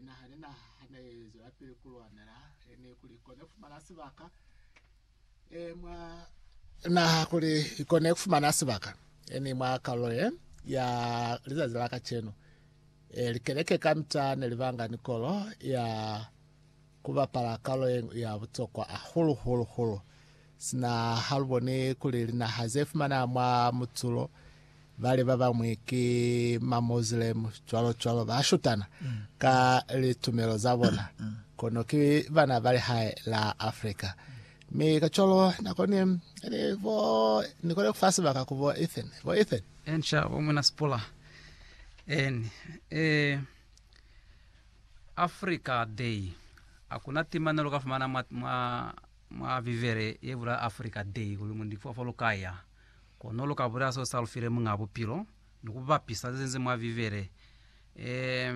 Na hane na hana ye zwelapili ku lwanela, e ne kuli i kone ku fumana sibaka e mwa naha, kuli i kone ku fumana sibaka e ni mwa kalulo ye ya lizazi la kacenu. E likeleke kamita ne li banga ni kolo ya ku bapala kalulo ye ñwi ya butokwa hahulu, hulu, hulu. Sina ha lu boni kuli linaha ze fumana mwa mutulo, bali ba bañwi ki Mamoslem, cwalo-cwalo, ba shutana ka litumelo za bona, kono ki bana ba lihae la Africa. Mi kacwalo na koni, ni bo, ni koni kufa sibaka ku bo Ethan, bo Ethan. Enca bo Mwina Sipula. En, eh, Africa Day. Akuna timanelo ka fumana mwa, mwa Mwa Bibele ye bula Africa Day kuli mu ndikifwa fo lu ka ya, kono lu ka bulela seo sa lu file Muñ'a Bupilo ni ku bapisa ze nzi mwa Bibele. E,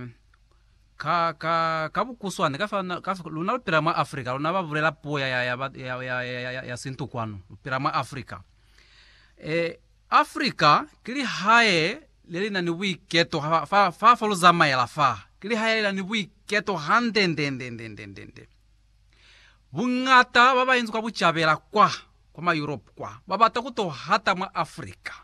ka, ka, ka bukuswane, ka fa, ka fa, luna lu pila mwa Africa, luna ba bulela puo ya, ya, ya, ba- ya, ya, ya, ya, ya, ya sintu kwanu, lu pila mwa Africa. E, Africa ki lihae le li na ni buiketo ha fa, fa, fa lu zamaela fa. Ki lihae le li na ni buiketo hande nde, nde, nde, nde, nde, nde. Buñata ba bainzi kwa bucabela kwa, kwa ma Europe kwa, ba bata ku to hata mwa Africa.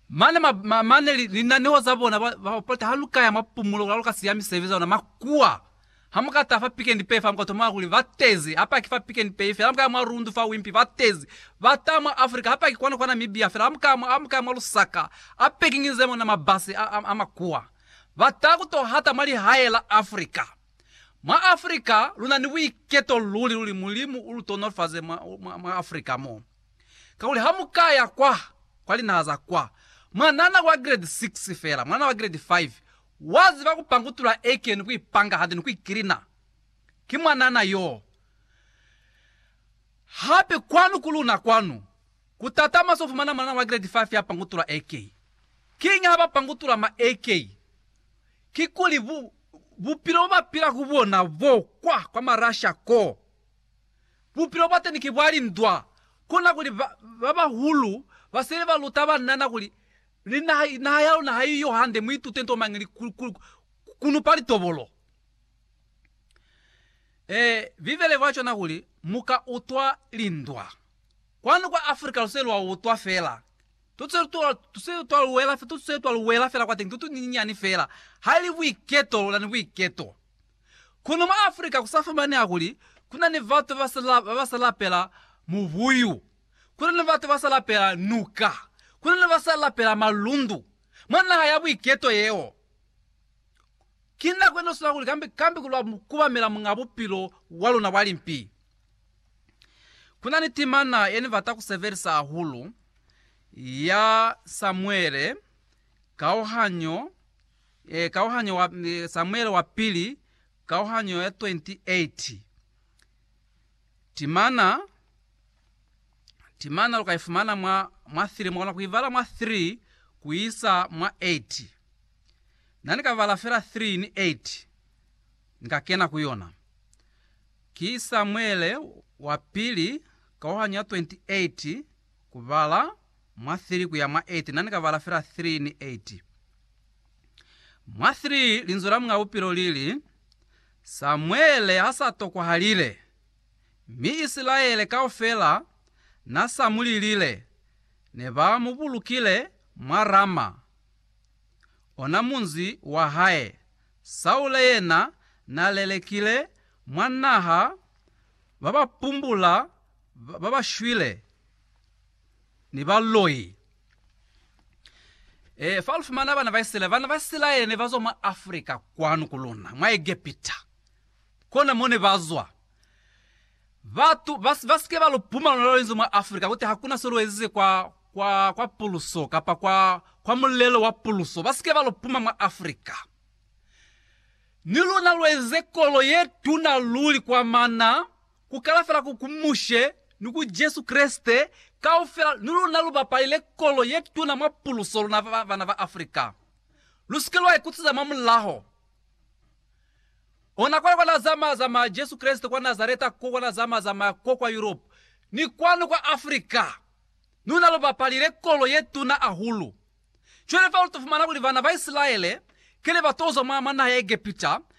Mane, ma, ma, mane li, linaneho za bona, ba, ba opoleta ha lu ka ya mwa pumulo, kula lu ka siya misebe za luna makuwa. Ha mu ka taha fa Pick and Pay fa, mu ka tomanga kuli ba tezi, hapa ki fa Pick and Pay fela. Ha mu ka ya mwa Rundu fa Wimpy, ba tezi. Ba taha mwa Africa, hapa ki kwanu kwa Namibia fela. Ha mu ka, ha mu ka ya mwa Lusaka, a packing nze mona mabasi a, a, a makuwa. Ba taha ku to hata mwa lihae la Africa. Mwa Afrika luna ni buiketo luli luli Mulimu ulutonolofaze mwa mwa mwa Afrika mo. Kakuli hamukaya kwa kwa linaha za kwa, mwanana wa grade six fela, mwanana wa grade five waziba kupangutula eke ni kuipanga hande ni kuikilina. Ki mwanana yo. Hape kwanu ku luna kwanu, kutata mwa sofumana mwanana wa grade five ya pangutula eke. Kiñi haba pangutula ma eke? Kikuli bu Bupilo bobapila ku bona bo kwa, kwa Marasha ko, bupilo bwateni ki bwa lindwa. Kona kuli ba, babahulu basele ba luta banana kuli, Ni naha, naha ya luna haiyo hande, muitute nto mañi li, ku, ku, kunupa litobolo. E, Bibele ibula cwana kuli, Muka utwa lindwa. Kwanu kwa Afrika luse lwa utwa fela, Tuse twa, tuse twa luwela, tuse twa luwela fela kwateni, tutu ni nyinyani fela. Haili buiketo, luna ni buiketo. Kono mwa Afrika kusa fumaneha kuli kuna ni batu basa la, basa lapela mubuyu, kuna ni batu basa lapela nuka, kuna ni basa lapela malundu, mwa naha ya buiketo yeo. Ki nako yene usula kuli kambi, kambi kulwa, kubamela Muñ'a Bupilo wa luna bwa limpi. Ku na ni timana ye ni bata ku sebelisa hahulu ya Samuele, kauhanyo, eh, kauhanyo wa, eh, Samuele wa pili, kauhanyo ya 28. Timana, timana lu ka ifumana mwa, mwa 3, mwa kona ku ibala mwa 3 ku isa mwa 8. Na ni ka bala fela 3 ni 8, ni ka kena ku yona. Ki Samuele wa Pili kaohanyo ya 28 kubala mwa 3 kuya mwa 8, na ni ka bala fela 3 ni 8. Mwa 3 Linzwi la Muñ'a Bupilo li li, Samuele ha sa tokwahalile, mi Isilaele kaufela na sa mu lilile, ne ba mu bulukile mwa Rama, ona munzi wa hae, Saule yena n'a lelekile mwa naha ba ba pumbula ba ba shwile ni baloi. E, fa lu fumana bana ba Isilaele, bana ba Isilaele ne ba zwa mwa Afrika kwanu ku luna, mwa Egepita. Kona mo ne ba zwa. Batu ba, ba si ke ba lu pumala luna lu inzi mwa Afrika, ku ti, Hakuna se lu ezize kwa, kwa, kwa puluso, kapa kwa, kwa mulelo wa puluso, ba si ke ba lo puma mwa Afrika. Ni luna lu eze kolo ye tuna luli kwa mana, ku kala fela ku, ku Mushe ni ku Jesu Kreste, kaufela, ni luna lu bapalile kolo ye tuna mwa puluso, luna ba, bana ba Afrika. Lu si ke lwa ikutsiza mwa mulaho. Ona kwale kwa Na zamaya, zamaya, Jesu Kreste, kwa Nazareta ko, kwa Na zamaya, zamaya ko kwa Yurope, ni kwanu kwa Afrika. Luna lu bapalile kolo ye tuna ahulu. Cwale fa lu to fumana kuli bana ba Isilaele kene ba to zwa mwa naha ya Egepita,